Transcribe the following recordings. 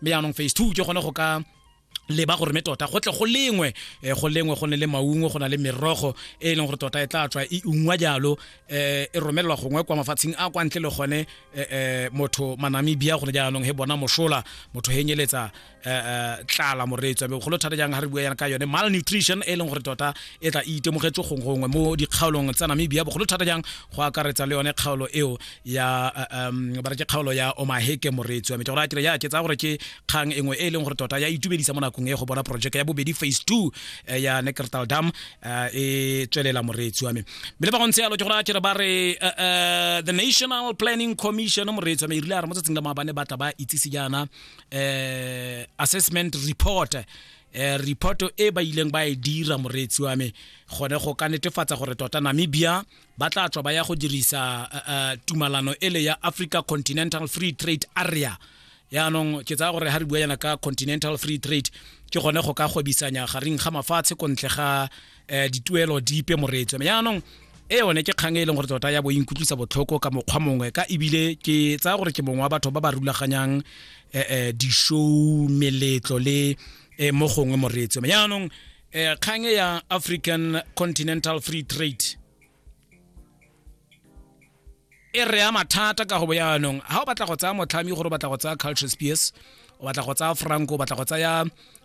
mme yaanong phase two ke gone go ka leba gore me tota go tle go lengwe eh, go lengwe go ne le maungo go na le merogo e e leng gore tota e tla tswa e ungwa jalo eh, e romelelwa gongwe kwa mafatsheng a kwa ntle le gone eh, motho manamibia gone jaanong he bona mosola motho henyeletsa tlala moreetswa be golo thata jang ga re bua yana ka yone malnutrition e leng gore tota e tla e itemogetse gongwe mo dikgaolong tsa namibia bogolo thata jang go akaretsa le yone kgaolo eo ya um ba re ke kgaolo ya omaheke moreetsi wa me ke gore a kere ya ke tsaya gore ke kgang engwe e e leng gore tota ya itumedisa mo nakong e go bona projeke ya bobedi phase two eh, ya neckertal dam eh, e tswelela moreetsi wa me mme le ba go ntse yalo ke gore a kere ba re eh, the national planning commission moreetsi wa me e rile a re mo tsatsing la maabane ba tla ba itsise jaana um assessment report eh reporto e ba ileng ba e dira moreetsi wa me gone go ka netefatsa gore tota namibia ba tla tswa ba ya go dirisa uh, uh, tumalano ele ya africa continental free trade area yaanong ke tsaya gore ga re bua yana ka continental free trade ke gone go ka gwebisanya gareng ga mafatshe ko ntle ga um dituelo dipe moreetso yaanong e yone ke kgang e leng gore tota ya bo inkutlwisa botlhoko ka mokgwa mongwe ka ebile ke tsaya gore ke mongwe wa batho ba ba rulaganyang um di-show meletlo le um mo gongwe moreetso jaanong eh kgang e ya african continental free trade e re ama thata ka go bo yaanong ga o batla go tsaya motlhami gore o batla go tsaya culture spears o batla go tsaya franco o batla go tsaya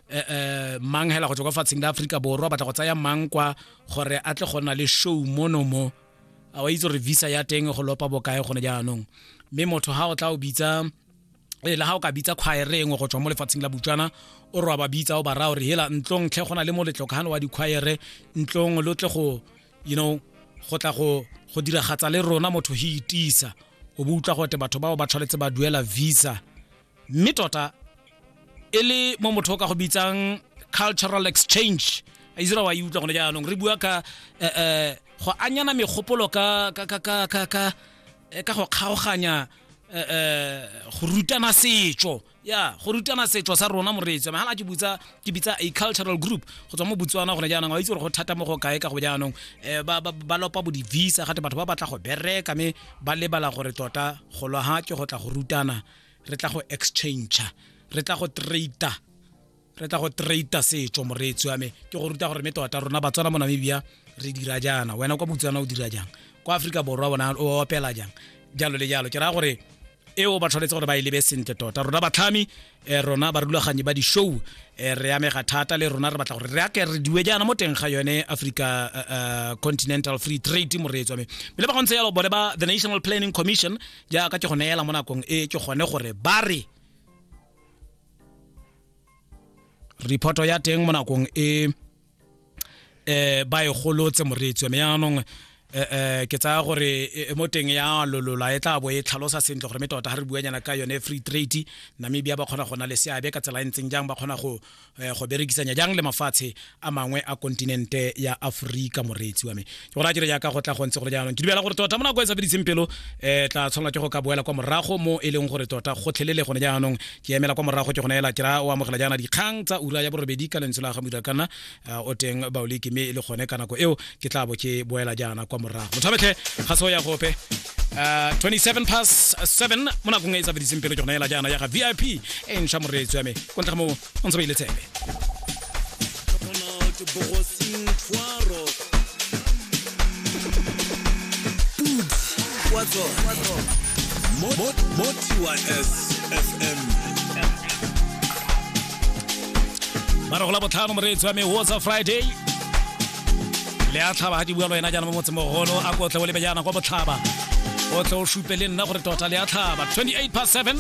eh, eh, mang hela go tswa kwa fatsheng la aforika borwa o batla go tsaya mang kwa gore a tle go nna le show mono mo a wa itse gore visa ya teng go lopa bokae gone jaanong mme motho ga o tla o bitsa e le ga o ka bitsa khwaere engwe go tswa mo lefatsheng la butswana o re wa ba bitsa o ba raya gore hela ntlong tlhe go na le moletlo ka gane wa dikhwaere ntlong lo tle go you know go tla go go diragatsa le rona motho he itisa o bo utlwa gote batho bao ba tshwanetse ba duela visa mme tota e le mo motho o ka go bitsang cultural exchange a isra wa e utlwa gone jaanong re bua ka eh, eh, go anyana megopolo ka ka ka ka ka ka eh, ka go kgaoganya eh, eh, go rutana setso ya go rutana setso sa rona moreetsi mahala ke butsa ke bitsa a cultural group go tswa mo botswana gone jaanong wa itse gore go thata mo go kae ka go jaanong um ba lopa bo di-visa gate batho ba batla go bereka mme ba lebala gore tota go lwa ga ke go tla go rutana re tla go exchange re tla go trader re tla go treita setso moreetsi wa me ke go ruta gore me tota rona batswana mo namibia re dira jaana wena kwa botswana o dira jang kwa aforika borwa bona o opela jang jalo le jalo ke raya gore eo ba tshwanetse gore ba e lebe sentle tota rona batlhami um rona barulaganyi ba di-show um re amega thata le rona re batla gore re ake re diwe jaana mo teng ga yone africa uh, continental free trade moreetso me me le ba gontse yalo bone ba the national planning commission jaaka ke go neela mo nakong e ke gone gore ba re reporto ya teng mo nakong e eh ba e golotse moreetsi wa me yaanong eh, eh ke tsaya gore e, e mo teng ya lolola e tla bo e tlhalosa sentle gore me tota ga re buanyana ka yone free trade namibia ba kgona go na le seabe ka tsela e ntseng jang ba kgona go eh, go berekisanya jang le mafatshe a mangwe a kontinente ya aforika moreetsi wa me ke gore a dire jaaka go tla go ntse gore jaanong ke dumela gore tota mo nako e sa fediseng pelo um tla tshwanela ke go ka boela kwa morago mo e leng gore tota gotlhelele gone jaanong ke emela kwa morago ke gone ela kera o amogela jaana dikgang tsa ura ya borobedi ka lentswe la ga moira kana eh, o teng baoleke mme e le gone ka nako eo ke tla bo ke boela jaana kwa morago motho abetlhe ga se go ya gope Uh, 27 past 7 mo nakong e e tsabediseng pelo ke gona ela jaana ya ga vip e ntšha moreetsi wa me ko ntle ga moo o ntse ba ile tsebe What's up? What's up? Mot, mot, mot, TYSFM. marago la botlhano moreetsi wa me whatsa friday le a tlhaba ga ke bua le wena jaana mo motseng mogolo a kotle o lebe jaana kwa botlhaba o tle o supe le nna gore tota le a tlhaba 28 past 7